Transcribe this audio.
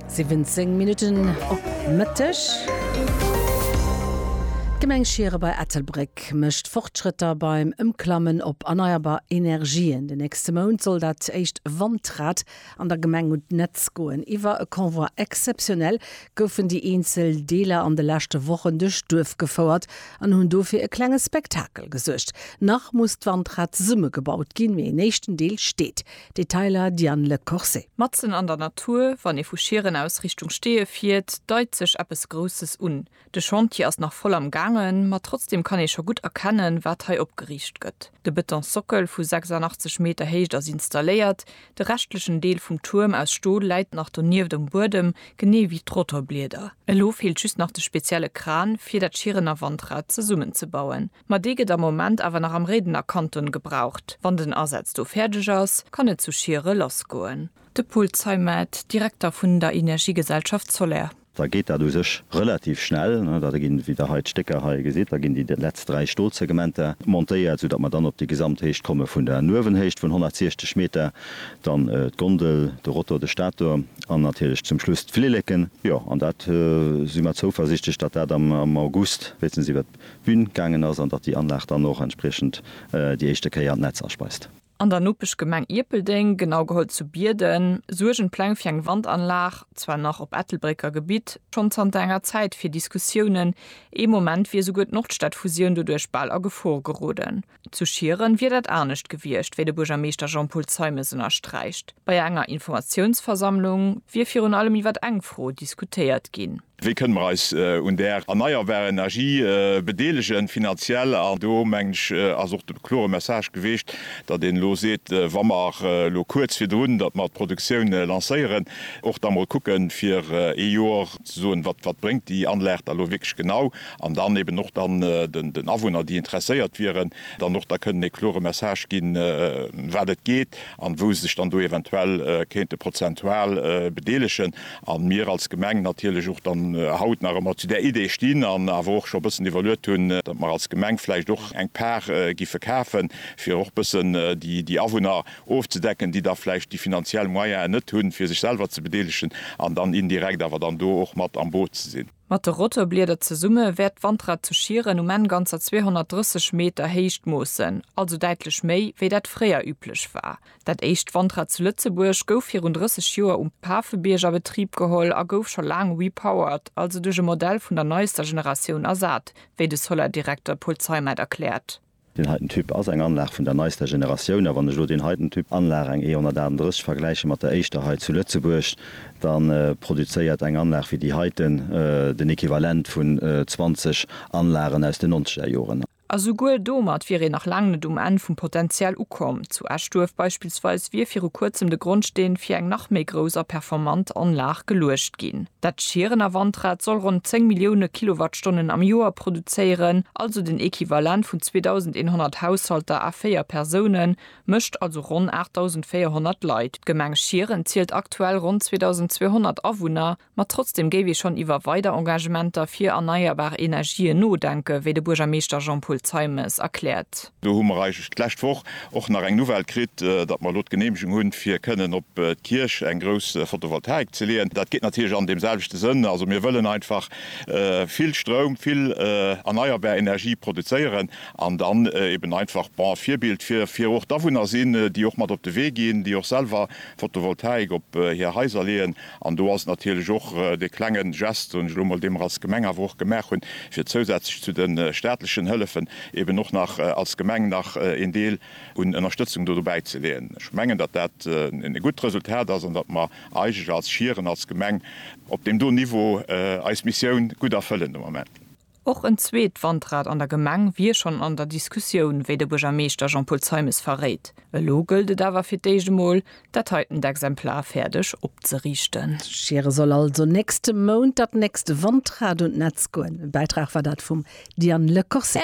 17 Minutten op Mëtteg. D'Gemeng Schiere bei Ettelbréck mécht Fortschrëtter beim Ëmklammen op erneierbar Energien. Den nächste Mount soll dat éischt Wandrad an der Gemeng un d'Netz goen. Iwwer e Convoi exceptionnel goufen déi eenzel Deeler an de leschte Wochen duerch d'Duerf gefouert an hunn do fir e klenge Spektakel gesuergt. Nach muss d'Wandrad zesummegebaut ginn, mee en éischten Deel steet. Detailer Diane Le Corset. Matzen an der Natur, wann ee vu Schieren aus Richtung Steeë fiert, deit sech eppes Grousses un. De Chantier ass nach voll am gaangen, ma trotzdeem kann ee scho gutt erkennen, wat hei opgeriicht gëtt. De Betonsockel vu 86 Meter Héicht ass installéiert, de reschtlechen Deel vum Tuerm aus Stol läit nach donieft um Buedem, genee wéi d'Rotorblieder. Elo feelt just nach de spezielle Kran, fir dat Schierener Wandrad zesummenzebauen. Ma dee gëtt am Moment awer nach am Réidener Kanton gebraucht. Wann den Asaz do fäerdeg ass, kann et zu Schiere lassgoen. De Paul Zeimet, Direkter vun der Energiegesellschaft Soler. Da geet dat u sech relativ schnell. Da ginn, wéi Der hei d'Stécker hei gesitt, da ginn déi letzt dräi Stolsegmenter montéiert, soudatt mer dann op déi Gesamthéicht komme vun der Nuewenhéicht vun 160 Meter, dann d'Gondel, de Rotor, de Stator an natierlech zum Schluss d'Flilleken. Jo, an dat si mer zouversiichtlech, datt dat am August, wéinstens iwwer. Bün gaangen ass an datt déi Anlag dann och entspriechend déi éischte Kéier d'Netz aspeist. An der Nopeschgemeng Ierpeldeng, genau geholl zu Bierden, suergen d'Pläng fir eng Wandanlag, zwar nach op Ettelbrécker Gebitt, schonn zanter enger Zäit fir Diskussiounen. Ee Moment wier esouguer d'Nordstadfusioun doduerch bal a Gefor geroden. Zu Schieren wier dat anescht gewiescht, wéi de Buergermeeschter Jean-Paul Zeimes ënnersträicht. Bei enger Informatiounsversammlung wier virun allem iwwer eng Fro diskutéiert ginn. Wéi kënne mer eis un där erneierbarer Energie bedeelegen, finanziell? An do, mengen ech, ass och de klore Message geweecht, datt een elo seet, wa mer elo kuerz virdrun, datt mer d'Produktioun lancéieren, och da mol kucken, fir ee Jor, ze soen, wat wat bréngt déi Anlag da elo wierklech genau, an dann eben och dann den den Awunner, déi interesséiert wieren, dann och da kënnen ee klore Message ginn, ëm wat et geet an wou se sech dann do eventuell kéinte prozentual bedeelegen. A mir als Gemeng natierlech och dann haut nach ëmmer zu där Idee stinn an awer och scho bëssen iwwerluet hunn, datt mer als Gemeng vläicht och eng Par gi verkafen, fir och bëssen déi déi Awunner ofzedecken, déi da vläicht déi finanziell Moyene net hunn, fir sech selwer ze bedeelegen an dann indirekt awer dann do och mat am Boot ze sinn. Mat de Rotorblieder zesumme wäert d'Wandrad zu Schieren um Enn ganzer 230 Meter Héicht moossen, also däitlech méi, wéi dat fréier üblech war. Dat éischt Wandrad zu Lëtzebuerg gouf virun 30 Joer um Pafebierg a Betrib geholl a gouf scho laang repowered, also duerch e Modell vun der neister Generatioun ersat, wéi de Solar-Direkter Paul Zeimet erkläert. Deen heiten Typ ass eng Anlag vun der neister Generatioun, a wann ech elo deen heiten Typ Anlag, eng E138, vergläiche mat der éischter hei zu Lëtzebuerg, da produzéiert eng Anlag wéi déi heiten den Equivalent vun 20 Anlagen aus den nonzeger Joren. A souguer domat wier een nach laang net um Enn vum Potenzial ukomm. Zu Eschduerf beispillsweis wier viru kuerzem de Grondsteen fir eng nach méi grouss a performant Anlag geluecht ginn. Dat Schierener Wandrad soll ronn 10 Millioune Kilowattstonnen am Joer produzéieren, also den Equivalent vun 2.100 Haushalter a véier Persounen, mécht also ronn 8.400 Leit. D'Gemeng Schieren zielt aktuell ronn 2.200 Awunner, ma trotzdeem géif ee schonn iwwer weider Engagementer fir erneierbar Energien nodenken, wéi de Buergermeeschter Jean-Paul Zeimes erkläert. Do hu mer eigentlech d'lescht Woch och nach eng Nouvelle kritt, datt mer elo d'Geneemegung hunn, fir kënnen op d'Kierch eng grouss Photovoltaik ze leeën. Dat geet natierlech an deem selwechte Sënn. Also mir wëllen einfach vill Stroum, vill erneierbar Energie produzéieren an dann eben einfach, bon, Virbild fir fir och d'Awunner sinn, déi och mat op de Wee ginn, déi och selwer Photovoltaik op hir Haiser leeën. An do ass natierlech och dee klenge Gest, soen ech elo mol, dee mer als Gemeng awer och gemaach hunn, fir zousätzlech zu de staatlechen Hëllefen eben och nach als Gemeng nach een Deel un Ënnerstëtzung do dobäi ze leeën. Ech mengen, datt dat e gutt Resultat ass an datt mer eigentlech als Schieren, als Gemeng op deem do Niveau eis Missioun gutt erfëllen de Moment. Och en zweet Wandrad an der Gemeng wier schonn an der Diskussioun, wéi de Buergermeeschter Jean-Paul Zeimes verréit. Elo gëllt et awer fir d'éischt emol, dat heitent Exemplar fäerdeg opzeriichten. Schiere soll also nächste Mount dat nächst Wandrad un d'Netz goen. E Bäitrag war dat vum Diane Lecorset.